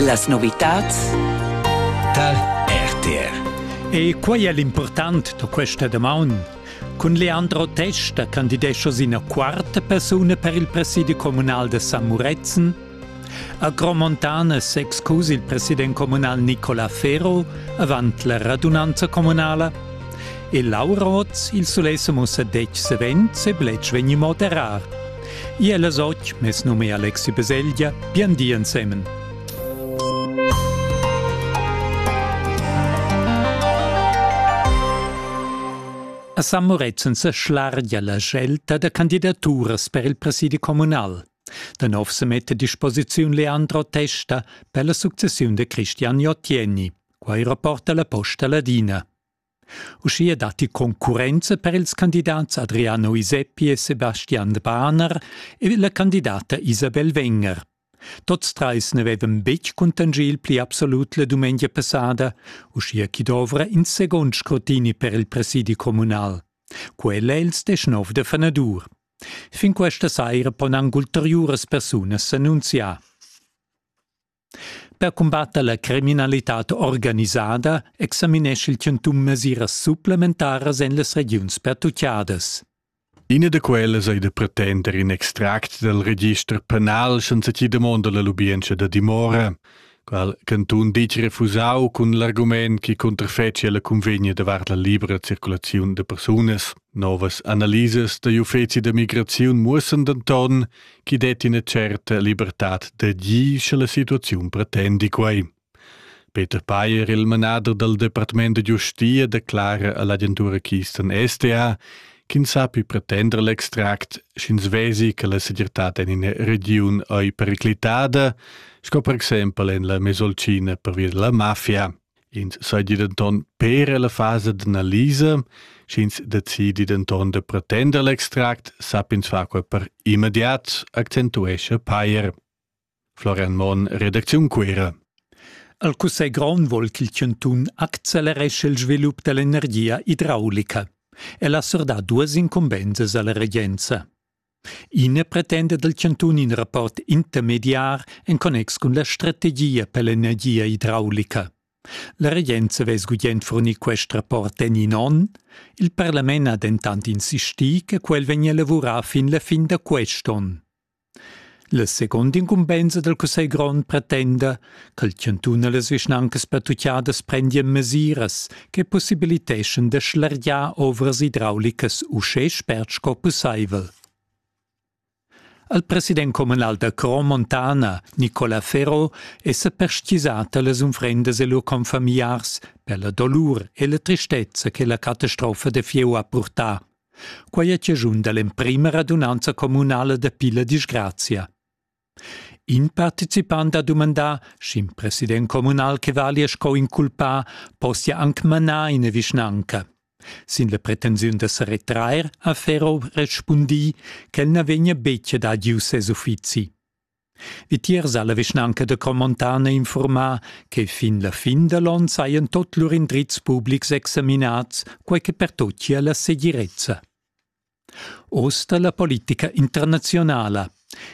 Las novitads tar RTR. E quai è l'impurtant da questa damaun. Cun Leandro Testa candidescha ina quarta persuna per il presidi communal de San Muretzen. A Gromontana s'excus il president communal Nicola Ferro avant la radunanza communala e Laura Roth il sulesse mussa dec savens e blec vegni moderar. Ia las otg, mes num è Alexi Baselgia, bien di ensemen. A San Murezzan sa schlargia la scelta da candidaturas per il presidi communal. Da nov se mette a disposiziun Leandro Testa per la successiun de Cristian Jottieni. Quai rapporta la Posta Ladina. Uschia datti concurrenza per ils candidats Adriano Iseppi e Sebastian Bahner ed la candidata Isabel Wenger. Tots trais n'avevan betg cuntanschì il pli absolut la dumengia passada, uschia ch'i dovra in segund scrutini per il presidi communal. Quel è il deschnov da fanadur. Fin questa saira pon anc ulteriuras persunas s'annunziar. Per cumbatter la criminalitad organisada examinesch il chantun mesiras supplementaras en las regiuns pertuccadas. Ina da quellas ei da pretender in extract dal register penal senza chi damonda la lubientscha da dimora, qual cantun ditg refusau cun l'argument chi cunterfecia la cunvegna davart la libera circulaziun da persunas. Novas analisas da l'uffeci da migraziun muossan denton chi detti ina certa libertad da gir sche la situaziun pretendi quei. Peter Payer, il manader dal Departement da giustia, declara all'agentura Kisten SDA ch'ins sappi pretender l'extract, sch'ins vesi che la segirtad en ina regiun ei periclitada, sco per exempel en la Mesolcina pervia della mafia. Ins seigi denton per ella fasa d'analisa, sch'ins decidi denton da pretender l'extract, sapp'ins far quei per immediat, accentuescha Payer. Florian Monn, redacziun Cuera. Al Cussegl grond vol ch'il chantun acceleresce il svilup dall'energia idraulica. El ha surdà duas incumbensas alla regenza. Ina pretenda dal chantun in rapport intermediar en connex cun la strategia per l'energia idraulica. La regenza vess gugent fornir quest rapport en in onn. Il parlament ha dentant insistì che quel vegnia lavurà fin la fin da quest onn. La secunda incumbensa dal Cussegl grond pretenda ch'al chantun e las vischnancas pertutgadas prendian mesiras che possibiliteschan da schlergiar ovras idraulicas uschè spert sco pussaivel. Al president communal da Cro Montana, Nicola Ferro, è sa perstgisata las unfrendas e lur confamiliars per la dolur e la tristezza che la catastrofa da fieu ha purtà. Quai è chaschun da l'emprima radunanza communala da Pilla disgrazia. In participant ha dumandà, sch'in president communal che valia sco inculpà possia anc manar ina vischnanca. Sin la pretensiun da sa retrair ha Ferro respundì ch'el na vegnia betg ad adieu ses uffizi. Vitiers ha la vischnanca da Cromontana informà che fin la fin da l'on sajan tot lur indrizs publics examinats, quai che pertochia la segirezza. Oz da la politica internazionala.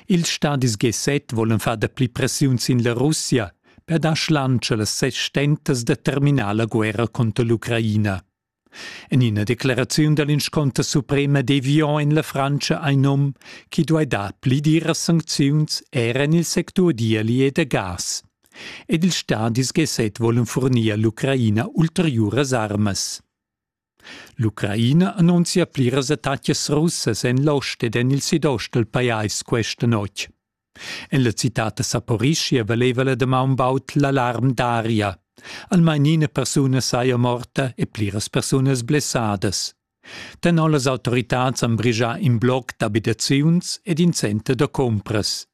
Ils stadis G7 volan far dapli pressiun sin la Russia per dar schlantscha las ses stentas da terminar la guerra conter l'Ucraina. En ina decleraziun da l'inscunter suprema devian en la Frantscha ein num ch'i duai dar pli diras sancziuns era en il sectur d'ieli e da gas. Ed ils stadis GSET volan furnir all'Ucraina ulteriuras armas. L'Ucraina annunzia pliras attacas russas en l'ost ed en il sidost dal pajais questa notg. En la citad da Saporischia valeva la damaun baud l'alarm d'aria. Almain ina persuna saja morta e pliras persunas blessadas. Tenor las autoritads han brigià in bloc d'abitaziuns ed in center da compras.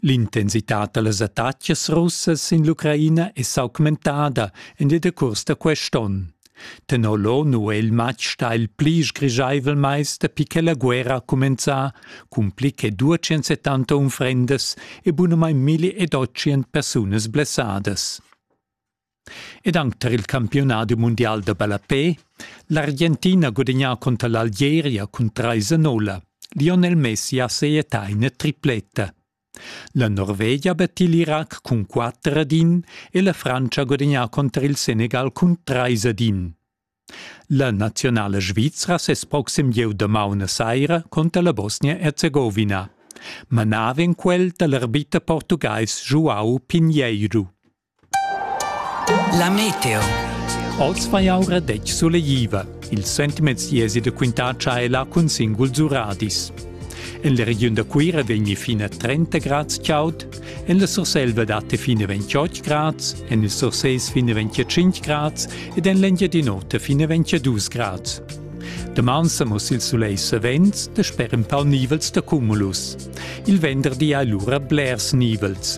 L'intensitad da las attacas russas sin l'Ucraina è s'augmentada en il decurs da quest onn. Tenor lò nu è il matg stà il pli sgrischaivel mais dapi che la guerra ha cumenzà, cun pli che 270 unfrendas e bunamain 1800 persunas blessadas. Ed anche tar il campiunadi mundial da ballapè, l'Argentina gudagnà conter l'Algeria cun 3-0. Lionel Messi ha sejetà ina tripletta. La Norvegia betti l'Irac cun quatter ad in e la Frantscha ha gudagnà cunter il Senegal cun trais ad in. La naziunala svizra ses proxim gieu damaun a saira conter la Bosnia-Herzegovina. Manava en quel dal arbiter portugais João Pinheiro. La meteo. Oz fa jau radetg sulegliva. Ils sentiments iesi da quintar tschaiela cun singuls uradis. En la regiun da Cuira vegni fin a 30 grads chaud, en la Surselva dat fin a 28 grads, en il Surses fin a 25 grads ed en l'Engiadin'Ota fin a 22 grads. Daman sa muss il sulei savens da sper empau nivels da cumulus. Il venderdi hai lura blers nivels.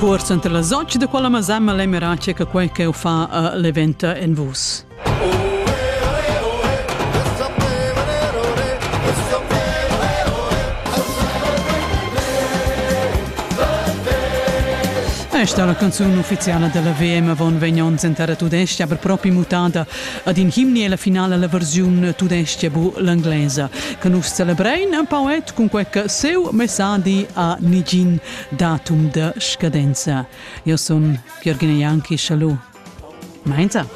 Cuors enter las otg da quella masama l'emera che quei ch'eu fa a l'eventa en vus. Esta la canzun ufficiala della VM avon vegn onns entara tudesca, aber propi mutada Ad in himni è la finala la versiun tudestga bu l'englesa, che nus celebrein empau et cun quei che seu messadi a nigin datum de scadenza. Io son Jürgen Janki, schalu. Mainza.